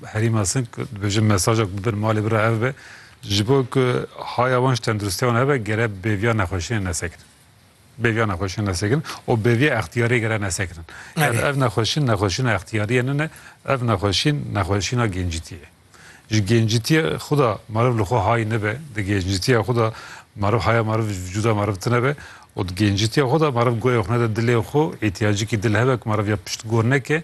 Herî mezin dibêjin mesaja ku bidin malê bira ev be ji bo ku haya wan ji tenduristiya wan hebe gere bêviya nexweşiyên nesekirin. Bêviya nexweşiyên nesekirin û bêviya extiyariyê gere nesekirin. Ger ev nexweşîn nexweşîna extiyariyê nine ev nexweşîn nexweşîna gencîtiyê ye. Ji gencîtiyê xwe de meriv li xwe hay nebe, di gencîtiya xwe de meriv haya meriv ji vîcuda meriv tinebe û di gencîtiya xwe de meriv goyê xwe nede dilê xwe îhtiyacikî dil hebe ku meriv ya piştgor neke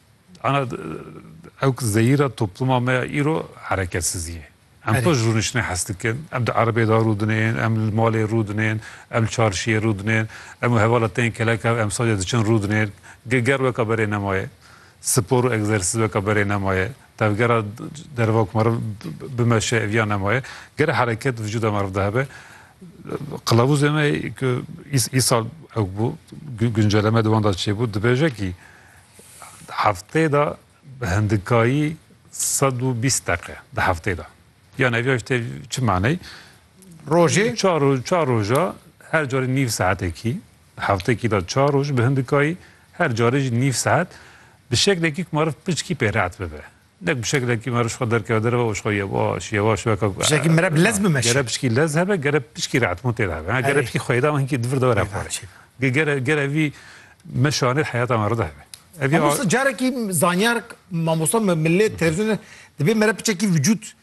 Ana ew ki zeyîra topluma me ya îro hereketsizî ye. Em to ji rûniştinê hes dikin, em di erebeyê de rû dinên, em li malê rû dinên, em li çarşiyê rû dinên, em û hevala tên kelek hev emsalê diçin rû dinên. Ger weka berê nemaye, spor û egzersîz weka berê nemaye, tevgera derva ku meriv bimeşe ev ya nemaye. Gere hereket vijûda meriv de hebe. Qilavûzê me ku îsal ew bû, gunceleme di wan de çêbû, dibêje kî Heftê de bi hindikayî sed û bîst deqe di heftê de. Yan ev ya tê çi maney? Rojê çar û çar roja her carê nîv saetekî hevtekî de çar roj bi hindikayî her carê jî nîv saet bi şeklekî ku marif piçkî pê reet bibe. Nek bi şeklekî me ji xwe derkeve derve û ji xwe yewaş yewaş weke ku. Bi şekî mere bi lez bimeşe. Gere pişkî lez hebe, gere pişkî re etmotê de hebe. Gere pişkî xweyda hinkî divir dewera xwe re. Gere gere vî me şanê heyata me re de hebe. Mamosta carekî zanyar mamosta me millet televizyonê dibê mere piçekî vücut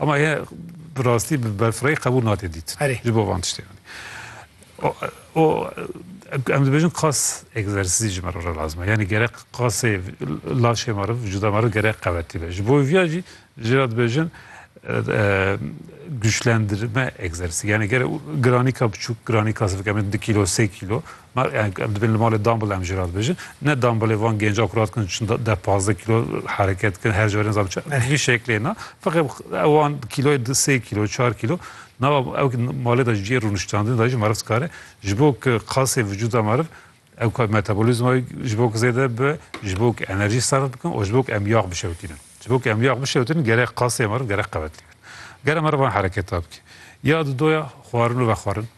Ama ye bi rastî bi berfirehî qebûl nate dît Erê. ji bo van tiştê. O, o em dibêjin qas egzersîzî ji me re re lazim e. Yanî gerek qasê laşê me re, vücuda me re gerek qewetî be. Ji bo vîya jî jê re dibêjin e, güçlendirme egzersîzî. Yanî gerek giranîka biçûk, giranîka sivik em ê du kîlo, sê kîlo Na em em dibin li malê Dumble em jî radibêjin. Ne Dumblê van gêncan ku radikin çin de deh pazdeh kîlo hereket dikin her carê nizam çi bi vî şeklê na. Feqê ewan kîloyê di sê kîlo çar kîlo na ew ki malê de cihê rûniştandinê de jî meriv dikare ji bo ku qasê vijûda meriv ew ka metabolîzma wê ji bo ku zêde bibe, ji bo ku enerjî serf bikin û ji bo ku em yax bişewitînin. Ji bo ku em yax bişewitînin gerek qasê meriv gerek qewetlî be. Ger em merivan hereketa bike ya di doya xwarin û vexwarin.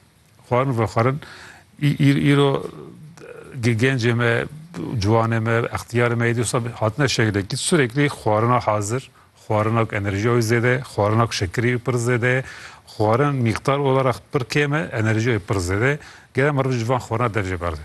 Xwarin vexwarin îro gencê me ciwanê me extiyarê me dîsa hatine şekilekî süreklî xwarina hazir xwarina ku enerjiya wî zêde xwarina ku şekirî wî pir zêde xwarin mîqdar olarak pir kêm e enerjiya wî pir zêde gere me roj ji van xwarina dev jê berdê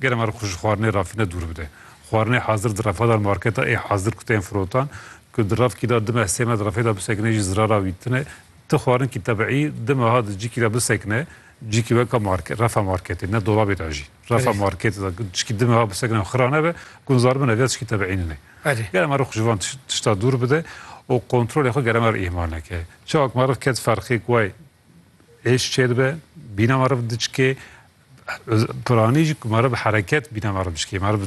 Gere me xwe ji xwarinê rafîne dûr bide. Xwarinê hazir di refa de marketa ê hazir ku tên firotan, ku di rafkî de di meh sê me di refê de bisekine jî zirara wî tune. Ti xwarinkî tebîî di meha di cikî de bisekine, cikî weka marke refa marketê ne dolabê de jî refa marketê de cikî di meha bisekine xira nebe, gunzar bine vêya tişkî tebîî nîne. Gere me xwe ji van tişta dûr bide û kontrolê xwe gere me re îhmal neke. Çawa ku me re ket ferqê ku way êş çêdibe, bîna me re diçike, Piranî jî ku ma re bi hereket bîna ma re biçikê. Ma re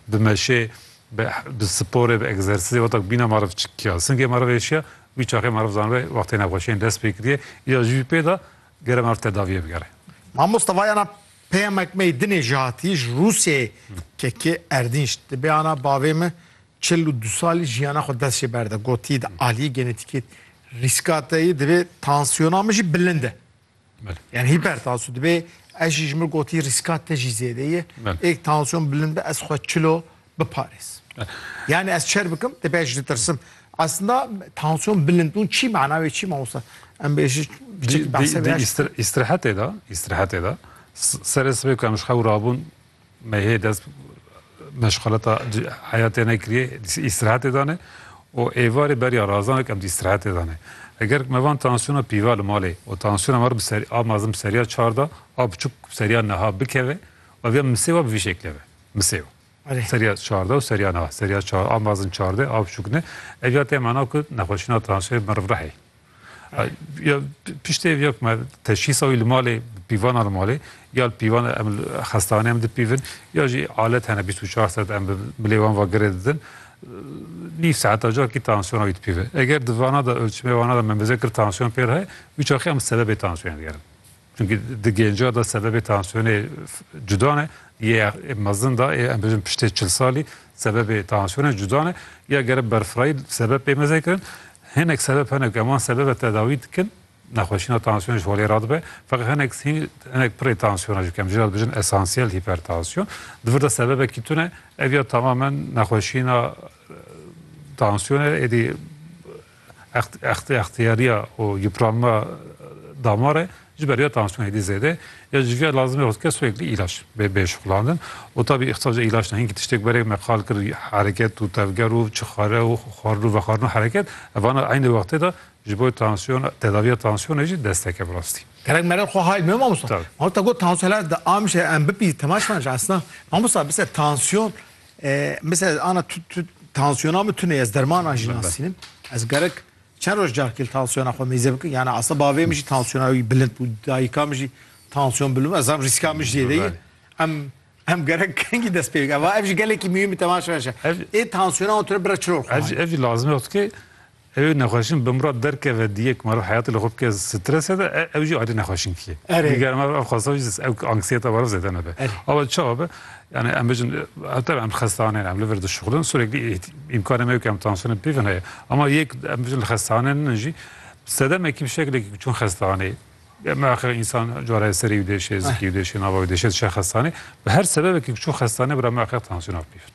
bi meşê, bi sporê, bi egzersîzê weta ku bîna ma re biçikiya. Singê ma re vêşiya, wî çaxê ma re zanibe wextê nexweşiyên dest pê kiriye. Îcar jî wî pê da gere ma re tedaviyê bigere. Mamoste vayana pêyamek me yê dinê jî hatiye ji Rûsyeyê kekê erdînc. Di bêyana bavê min çil û du salî jiyana xwe dest jê berde. Gotiye di aliyê genetîkê rîskateyê divê tansiyona min jî bilind e. Yani hipertansiyon dibê ez jî ji min gotî rîska te jî zêde ye. Êk tansiyon bilind be ez xwe çilo biparêz. Yani ez çer bikim te pê ji tirsim. Aslında tansiyon bilind bûn çî mana wê çî mamosta. Em bê jî istirahatê de istirahatê de serê sibê ku em ji xew rabûn Me hê dest meşxaleta heyatê nekiriye îstirahetê dane û êvarê beriya razanek em dî îstirahetê dane. Eger me van tansiyona pîva li malê û tansiyona me bi serî a mezin bi seriya çar da a biçûk bi seriya niha bikeve ev ya misê wa bi vî şekle be. Misê wa. Erê. Seriya çar da û seriya niha. Seriya çar a mezin çar de a biçûk ne. Ev ya te mana ku nexweşîna tansiyonê meriv rehê. Ya piştê ev ya me teşhîsa wî li malê pîvana li malê ya li pîvan em xestanê em dipîvin ya jî alet hene bîst û çar saet em bi bilê wan va girê didin nîv saeta ca kî tansiyona wî dipîve eger di vana da ölçmê vana da me meze kir tansiyon pêr heye wî çaxê em sebebê tansiyonê digerin Çunkî di gênca de sebebê tansiyonê cuda ne, yê mezin de yê em bijin piştê çil salî sebebê tansiyonê cuda ne. Ya gere berfirayî sebeb pê meze kirin. Hinek sebeb hene ku em wan sebeb ve tedawî dikin. Nexweşîna tansiyonê ji holê re dibe. Feqî hinek hinek pirê tansiyona jî kem jî re dibijin esansiyel hîpertansiyon. Di vir de sebebekî tune ev ya tamamen nexweşîna tansiyonê êdî Extiyariya û yupranma damar e ji ber ya tansiyonê dî zêde ya ji vîya lazim e hozir kes wek îlaç bê bê şixulandin û tabî îxtîsaca îlaç ne hingî tiştêk berê me qal kir hereket û tevger û çixare û xwarin û vexwarin û hereket evana eynî wextê de ji bo tansiyon tedaviya tansiyonê jî desteke bi rastî. Gerek merel xwe hay bime mamosta. Mamosta got tansiyon hela di amişe em bipî temaşan ji esna. Mamosta bise tansiyon Misal ana tu tansiyona min tune ez dermanan jî nasînim. Ez gerek çend roj carkil tansiyona xwe mêze bikin yani asla bavê min jî tansiyona wî bilind bû dayika min jî tansiyon bilim ez zam rîska min jê deyê em em gerek kengî dest pê eva ev jî gelekî mîyû min temaşa şe ê tansiyona wan tune bira çiror ev jî lazim yok ki Ew nexweşin bi mirad derkeve diyê ku meriv heyatê li xwe bike strese de, ew jî ayrî nexweşinkî ye. Erê. Diger me ev xwesta jî ew anksiyeta meriv zêde nebe. Erê. Ava çawa be? Yanî em bijin ev tevî em li xestaneyn em li vir dişuxulin. Sûreklî îmkanê me yo ku em tansiyonên pîv in heye. Ema yek em bijin li xestaneyn in jî sedemekî bi şeklekî ku çûn xestaneyê me axir însan cara ye serê wî dêşê, zikê wî dêşê, nava wî dêşê dişe xestaneyê. Bi her sebebekî ku çûn xestaneyê bira me axir tansiyona pîv in.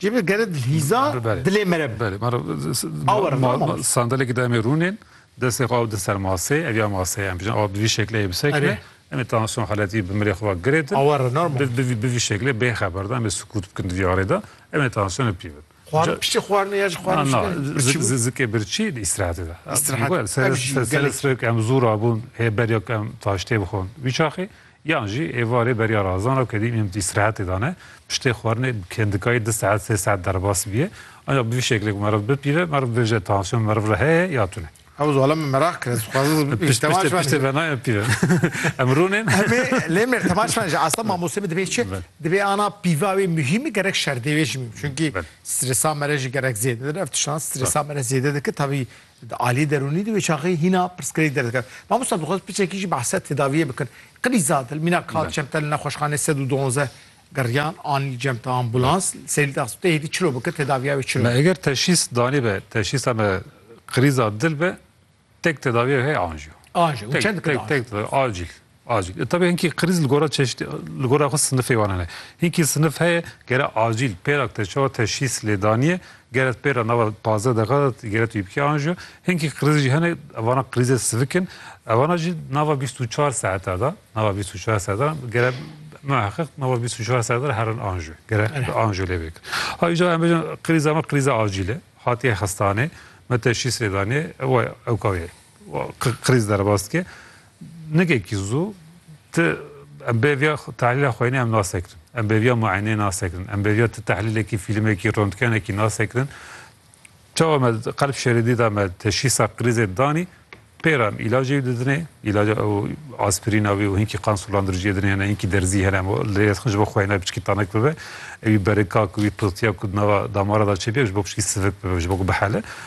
Cî bi gerid hîza dilê me re. Belê ma re sandalekî da me rûnên destê xwe ew di ser masê ev ya masê em bijin ew bi vî şekleyê bisekine em ê tansiyon heletî bi milê xwe ve girêdin bi vî şeklê bê xeber da em ê sikût bikin di vî arê de em ê tansiyonê bi pî bin. Piştî xwarinê ya jî xwarin na zikê birçî di îstirahetê de îstirahet serê serê sirê em zû rabûn hê berya em taştê bixwin wî çaxê Yan jî êvarê beriya razan ra ku dî em îstirahetê dane, piştê xwarinê bi kendikayî du saet sê saet derbas bîye. Ancak bi vî şeklê ku meriv bipîve, meriv bêje tansiyon meriv re heye ya tune. Ew zala min meraq kir, ez dixwazim bipîvim. Piştê piştê piştê ve nayê pîvin. Em rûnên. Em ê lê mêr temaşe min ji asta mamosteyê min dibê çi? Dibê ana pîva wê muhîm gerek şerdê wê jî muhîm. Çunkî stresa me re jî gerek zêde dide. Ev tiştan stresa me re zêde dike. Tevî Di aliyê derûnî de wê çaxê hîna pirsgirêk derdikeve. Mamosta dixwest piçekî jî behsa tedaviyê bikin. Qilîza di li mîna Kat Cemte li nexweşxanê sed û duwazdeh geriyan anî cemta ambulans. Li Serî di hespîtê hêdî çilo bike tedaviya wê çilo Me ye. eger teşhîs danîbe, teşhîsa me qilîza dil be, tek tedaviyê wê heye anjiyo. Anjiyo. Tek, Çend dikir tek, anjiyo? tek, acîl. Acîl. E tevî hinkî krîz li gora çeşîtî li gora xwe sinifê wan hene. Hinkî sinif heye gere acîl pêra te çawa teşhîs lê danîye, gere pêra nava pazdeh deqa de gere tu yî bikî anjiyo. Hinkî krîz jî hene evana krîzê sivik in. Evana jî nava bîst û çar saeta de, nava bîst û çar saeta de gere muheqiq nava bîst û çar saeta de herin anjiyo. Gere anjiyo lê bikin. Ha îcar em bêjin krîza me krîza acîl e. Hatiye xestanê, me teşhîs lê danîye, ew ewka wê ye. Krîz derbas dike. Nigekî zû ti em bêriya tehlîla xwênê em nasekirin. Em bêriya muayeneyê nasekirin. Em bêriya ti tehlîlekî, fîlmekî, rontgenekî nasekirin. Çawa me qelb şerê dî da me teşhîsa krîzê danî, pê re em îlacê wî didinê, îlaca aspirîna wî û hinkî qan sulandiricijê dinê hene, hinkî derzî hene, lê ji bo xwêne piçkî tanik bibe, ewî berika ku wî piltiya ku di nava damara de çêbiya ji bo piçkî sivik bibe, ji bo ku bihele.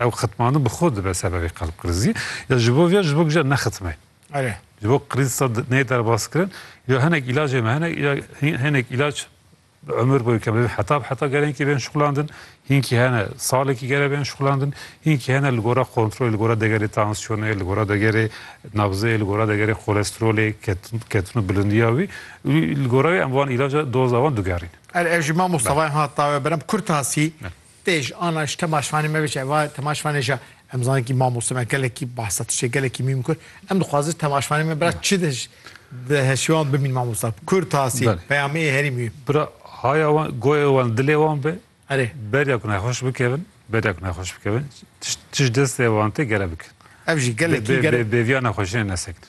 Ew xitmandin bi xwe dibe sebebê qelbqrizî ya ji bo vê ya ji bo gije nexitme. Erê. Ji bo qriz sa nê derbaskirin ya hinek îlacê me hene ya hinek îlac bi umur boyê ke me heta bi heta gerenkî bên şixulandin, hinkî hene salekî gere bên şixulandin, hinkî hene li gora kontrolê, li gora degerê tansiyonê, li gora degerê nabzê, li gora degerê kolesterolê, ketin û bilindiya wî û li gora wî em van îlaca doza wan digerînin. Erê ez jî mamosta vayê hata we berem Kurtasî Tê ji ana ji temaşvanê me biçe va temaşvanê ja em zanin kî mamoste me gelekî behsa tiştê gelekî mîm kir. Em dixwazin temaşvanê me bira çi de di heşiwan bimîn mamosta. Kurd tasî peyamê herî mîm. Bira haya wan goyê wan dilê wan be. Erê. Beriya ku nexweş bikevin, beriya ku nexweş bikevin tişt tişt destê wan tê gere bikin. Ev jî gelekî gere. Bêviya nexweşiyê nesekirin.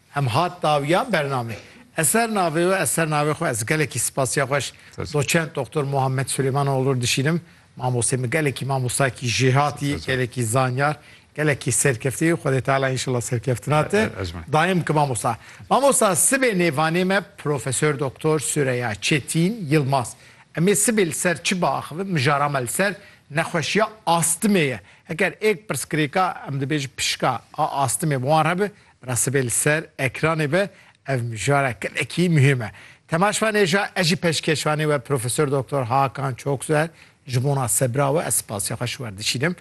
Em hat dawiya bername. Ez ser navê we ez ser navê xwe ez gelekî spasiya xweş doçent Doktor Muhammed Suleymanoğlu dişînim. Mamostê min gelekî mamostayekî jêhatî, gelekî zanyar, gelekî serkeftî. Xwedê Teala înşallah serkeftina te daim ki mamosta. Mamosta sibê nêvanê me Profesör Doktor Süreya Çetîn Yilmaz. Em ê sibê li ser çi biaxivin? Mijara me li ser nexweşiya astimê ye. Heger êk pirsgirêka em dibêjin pişka a astimê bi wan re bi Bira sibê li ser ekranê be ev mijara gelekî muhîm e. Temaşvanê ja ez jî pêşkêşvanê we Profesor Doktor Hakan Çokser ji bona sebira we ez spasiya xwe ji wer dişînim.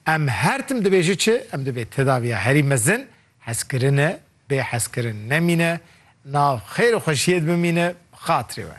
Em her tim dibêjin çi em divê tedaviya herî mezin hezkirin e bê hezkirin nemîne nav xêr û xweşiyê di bimîne bi xatirê we.